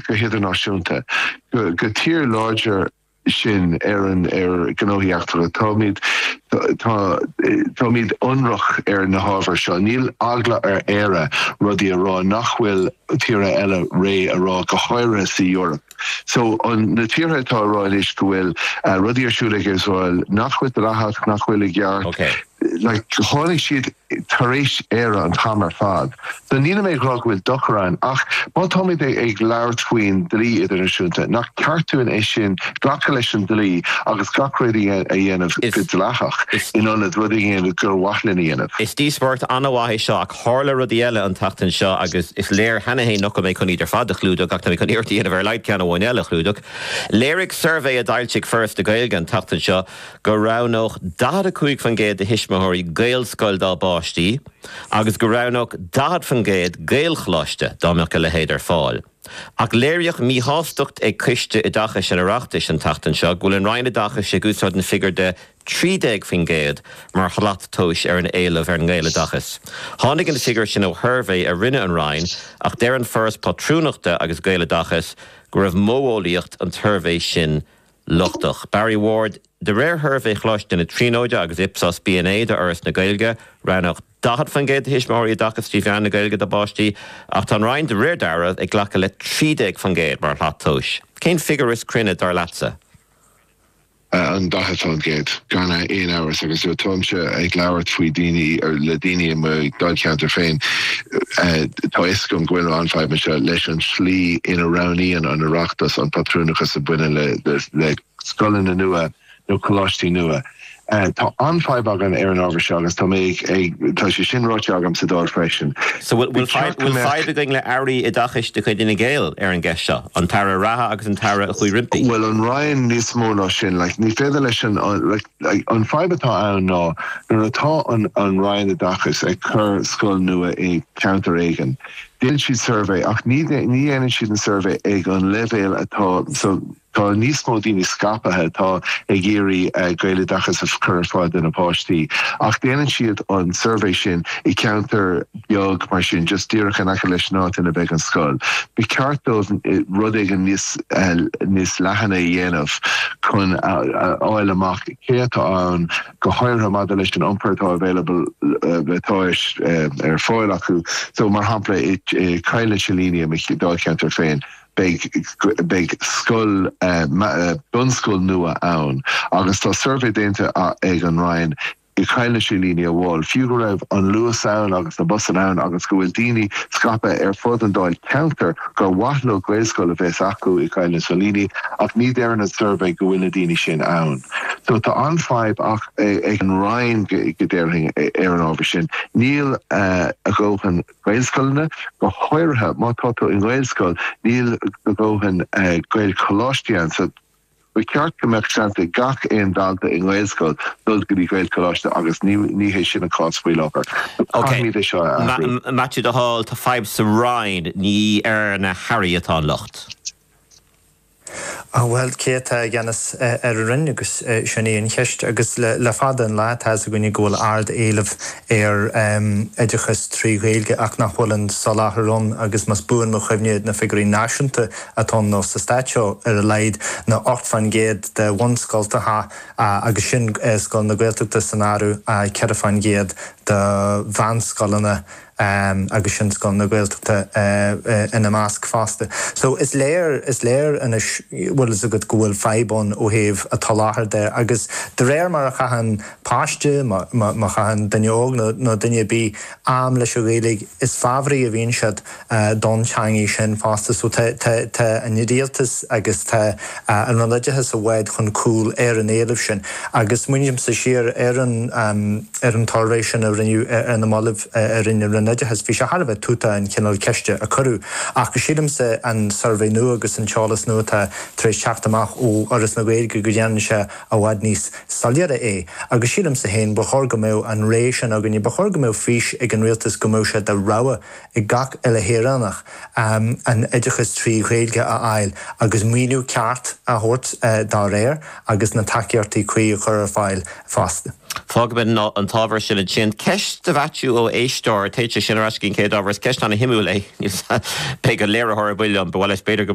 go hidirnáisiúnta, gur tír láidir sinn, Éireann, ar gnóthaí eachtracha. Táimid táimid ionraic ar na hábhair seo. Níl eagla ar Éire rudaí a rá nach bhfuil tíortha eile réidh a rá, go háirithe sa Eoraip. So an na tíortha atá a rá anois go bhfuil rudaí ar siúl ag Iosrael nach bhfuil dleathach, nach bhfuil i gceart, like tháinig siad, tar éis Éire an t-am ar fad. So nílim ag rá go bhfuil dochar ann ach má táimid ag labhairt faoin dlí idirnáisiúnta, nach ceart dúinn é sin, glacadh leis an dlí agus gach rud a dhéanamh go dleathach in ionad rud a dhéanamh gur mhaith linn a dhéanamh. Is díospóireacht an-mhaith é seo ach thárla rudaí eile an tseachtain seo agus is léir cheana féin nach bhfuil mé chun iad ar fad a chlúdach ach táimid chun iarracht a dhéanamh ar a laghad ceann amháin eile a chlúdach. Léirigh suirbhé a d'fhoilsigh Foras na Gaeilge an tseachtain seo, go roghnódh 45% de thuismitheoirí Gaelscoil dá bpáistí agus go roghnódh 40% Gaelcholáiste dá mbeadh a leithéid ar fáil. Ach léiríodh míshástacht ag Coiste Oideachais an Oireachtais an tseachtain seo go bhfuil an Roinn Oideachais ag úsáid an figiúr de 13% mar shlat tomhais ar an éileamh ar an nGaeloideachas. Tháinig an figiúr sin ó shuirbhé a rinne an Roinn ach deir an Foras Pátrúnachta agus Gaeloideachas go raibh modheolaíocht an tsuirbhé sin lochtach. Barry Ward, de réir shuirbhé Choláiste na Tríonóide agus Ipsos B&A d'Fhoras na Gaeilge, roghnódh 40% de thuismitheoirí oideachas trí mheán na Gaeilge dá bpáistí, ach tá an Roinn, de réir dealraimh, ag glacadh le 13% mar shlat tomhais. Cén figiúr is cruinne, dar leatsa? An 40%, gan aon amhras, agus táimse ag labhairt faoi dhaoine, le daoine i mo Dháilcheantar féin. Tá 'fhios agam go bhfuil an fadhb anseo leis an tslí ina roghnaíonn an Oireachtas an pátrúnachas a bhaineann le scoileanna nua nó coláistí nua. Tá an-fhadhb againn ar an ábhar seo agus tá mé ag, tá sé sin ráite agam sa Dáil freisin. So bhfuil Ba cheart go bhfuil mbeadh. fadhb againn le hAirí Oideachais de chuid Fhine Gael ar an gceist seo, an tAire reatha agus an tAire a chuaigh roimpi? Bhuel, an Roinn níos mó ná sin? Like ní féidir leis an, like. An fhadhb atá ann ná nuair atá an Roinn Oideachais ag cur scoil nua i gceantar éigin, déanann siad suirbhé ach ní dhéanann siad an suirbhé ag an leibhéal atá so tá níos mó daoine scaipthe atá ag iarraidh Gaeloideachas a chur ar fáil do na páistí ach déanann siad an suirbhé sin i gceantar beag mar sin, just díreach in aice leis an áit ina mbeidh an scoil. Ba cheart dóibh rud éigin níos níos leathan a dhéanamh chun a fháil amach cé atá ann, go háirithe maidir leis an iompar atá available, atá ar fáil acu. So, mar shampla, i Coill na Silíní, i mo Dháilcheantar féin, beidh beidh scoil bunscoil nua ann agus tá suirbhé déanta ag an Roinn, i gCoill na Silíní, bhuel, fiú go raibh an Luas ann agus na busanna ann agus go bhfuil daoine scaipthe ar fud an Dáilcheantair gur mhaith leo Gaelscoil a bheith acu i gCoill na Silíní ach ní deireann an suirbhé go bhfuil na daoine sin ann. So tá an-fhadhbach ag an Roinn a déarfainn ar an ábhar sin. Níl a dhóthain Gaelscoileanna, go háirithe má tá tú i nGaelscoil, níl do dhóthain Gaelcholáistí ann. So. Ba cheart go mbeadh seans ag gach aon dalta i nGaelscoil dul go dtí Gaelcholáiste agus ní hé sin an cás faoi láthair. Caithfimíd é seo a athrú. Maitiú de Hál, tá fadhb sa Roinn, ní ar na hAirí atá an locht. Bhuel, cé atá i gceannas ar an Roinn agus sin í an cheist. Agus le fada an lá tá's againne go bhfuil ardéileamh ar oideachas trí Ghaeilge ach nach bhfuil an soláthar ann agus más buan mo chuimhne na figiúirí náisiúnta, atá ann nó sa Stát seo ar a laghad ná 8 fán gcéad de bhunscoltacha agus sin scoileanna Gaeltachta san áireamh 4 fán gcéad de mheánscoileanna agus sin scoileanna Gaeltachta ina measc fosta. So is léir, is léir anois bhfuil fhios agat go bhfuil fadhb ann ó thaobh an tsoláthair de agus de réir mar a chaitheann páiste mar a chaitheann duine óg nó duine ar bith am leis an Ghaeilge is fabhraí a bhíonn siad don teangaidh sin fosta. So tá an Rialtas agus tá an Roinn Oideachais i bhfad chun cúil ar an éileamh sin. Agus smaoinímse siar ar an ar an tsuirbhé sin a rinneadh ar na moillibh a rinne an Roinn Oideachais, bhí sé thar a bheith tútach an cineál ceiste a cuireadh. Ach sílimse an suirbhé nua agus an t-eolas nua atá tar éis teacht amach ó Fhoras na Gaeilge go ndéanann sé i bhfad níos soiléire é. Agus sílimse féin ba chóir go mbeadh an ré sin againne, ba chóir go mbeadh fís ag an Rialtas go mbeadh sé de rogha ag gach uile shaoránach an oideachas trí Ghaeilge a fháil agus maoiniú ceart a thabhairt dá réir agus na tacaíochtaí cuí a chur ar fáil fosta. Fágfaimid an t-ábhar sin ansin. Ceist do Mhaitiú ó éisteoir, téann sé sin ar ais go dtí an chéad ábhar, is ceist an-shuimiúil é. Níl 's a'm. Beidh an léiritheoir ar buile liom, ba mhaith leis b'fhéidir go.